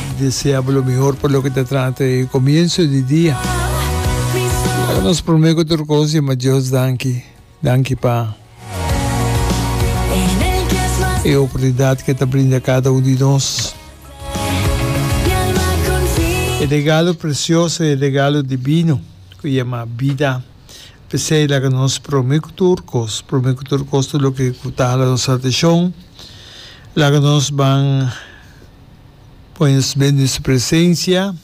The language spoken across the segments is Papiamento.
Mi desea bo lo mihor pa loke ta trata e comienzo di dia. Ora nos prome cu tur cos di ma Dios danki. Danki pa e oportunidad cu e ta brinda cada un di nos. E regalo precioso, e regalo divino cu yama bida. Pesey laga nos prome cu tur cos, prome cu tur cos tur loke cu ta hala nos atencion. Laga nos ban. Pon nos bende den su presencia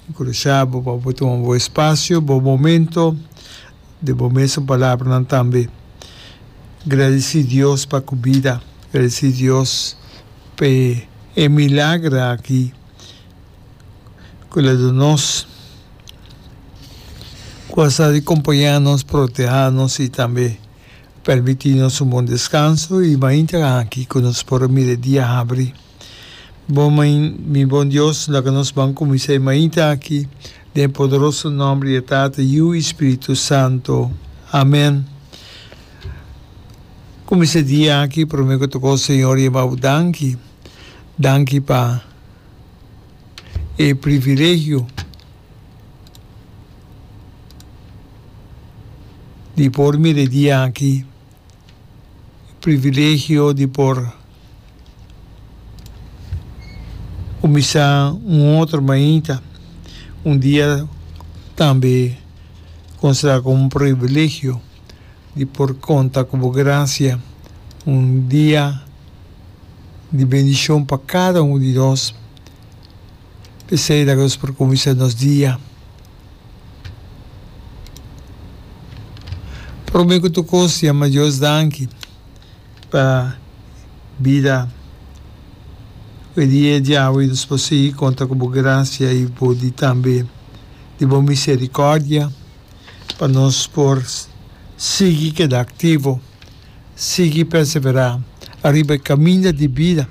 y crushabo pa bo tuma bo espacio, bo momento den bo mes su palabranan tambe. Gradeci Dios pa cu bida, gradeci Dios pa e milagro aki cu la duna nos cu a sa di compaña nos, proteha nos y tambe. Permití nos un bon deskanso i mainta aki ku nos por mira dia habri. Bo main, mi bon Dios, laga nos ban kuminsá e mainta aki, den e poderoso nòmber di e Tata, Yu i Spiritu Santu. Amèn. Kuminsá dia aki, promé ku tokó, Señor, yama Bo danki. Danki pa e privilegio. Di por mira e dia aki, e privilegio di por kuminsá un otro mainta, un dia tambe konsiderá komo un privilegio di por konta ku bo grasia, un dia di bendishon pa kada un di nos. P'esei ta ke nos por kuminsá nos dia promé ku tur kos yama Dios danki pa bida. Oye di e dia awe nos por sigui konta ku bo grasia i bo di tambe di bo miserikòrdia pa nos por sigui keda aktivo. sigui perseverá ariba e kaminda di bida,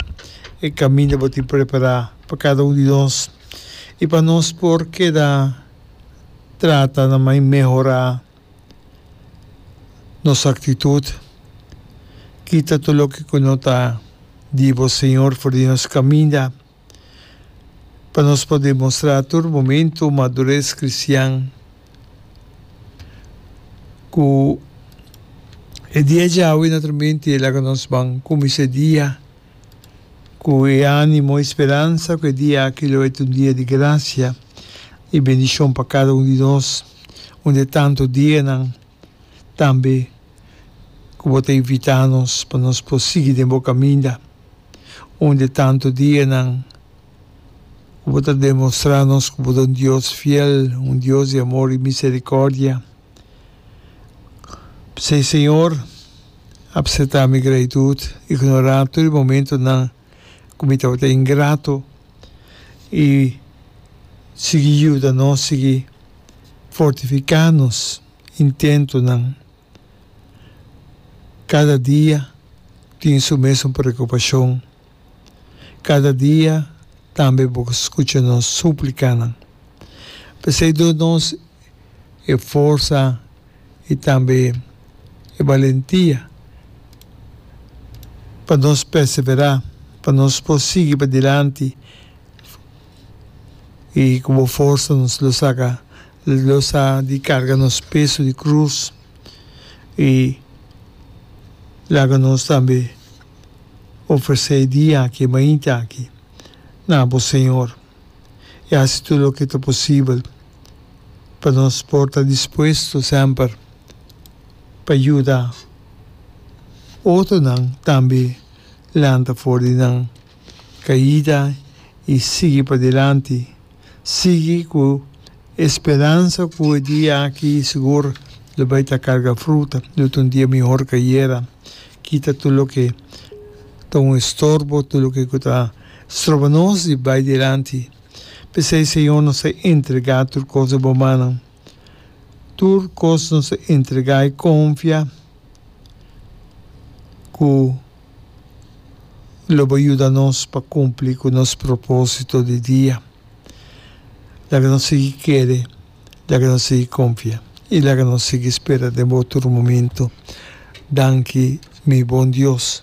e kaminda bo tin prepará pa kada un di nos i pa nos por keda trata na mai mehorá nos aktitut. Kita tur loke ku no ta di bo Señor for di nos kaminda. pa nos por demostrá tur momentu madures kristian. Ku e dia djawe na tormenti, laga nos ban kuminsá e dia ku e ánimo, e speransa ku e dia aki lo et un dia di grasia i bendishon pa kada un di nos, un di e tantu dianan. tambe ku bo ta invitá nos pa nos por sigui den bo kaminda. Un di e tantu dianan ku bo ta demostrá nos ku bo ta un Dios fiel, un Dios di amor i miserikòrdia. P'esei, Señor, apseptá mi gratitut, ignorá tur e momentunan ku mi tabata ingrato i sigui yuda nos sigui. fortifiká nos intentonan. Kada dia tin su mes un preokupashon. Kada dia tambe bo ta skucha nos súplikanan. P'esei duna nos e forsa i tambe e balentia pa nos perseverá, pa nos por sigui padilanti. i ku bo forsa nos lo saka lo sa di karga nos peso di krus i laga nos tambe ofresé e dia aki e mainta aki na bo Señor i hasi tur loke ta posibel pa nos por ta dispuesto semper pa yuda otronan tambe lanta for di nan caida y sigui padilanti, sigui cu e speransa cu e dia aki sigur lo bay ta carga fruta, lo ta un dia mihor ca ayera, kita tur loke ta un estorbo, tur loke cu ta stroba nos di bay dilanti. P'esey Señor nos ta entrega tur cos na bo mannan, tur cos nos ta entrega y confia cu. lo bo yuda nos pa kumpli ku nos propósito di dia. Laga nos sigui kere, laga nos sigui konfia i laga nos sigui spera den bo tur momentu. Danki, mi bon Dios.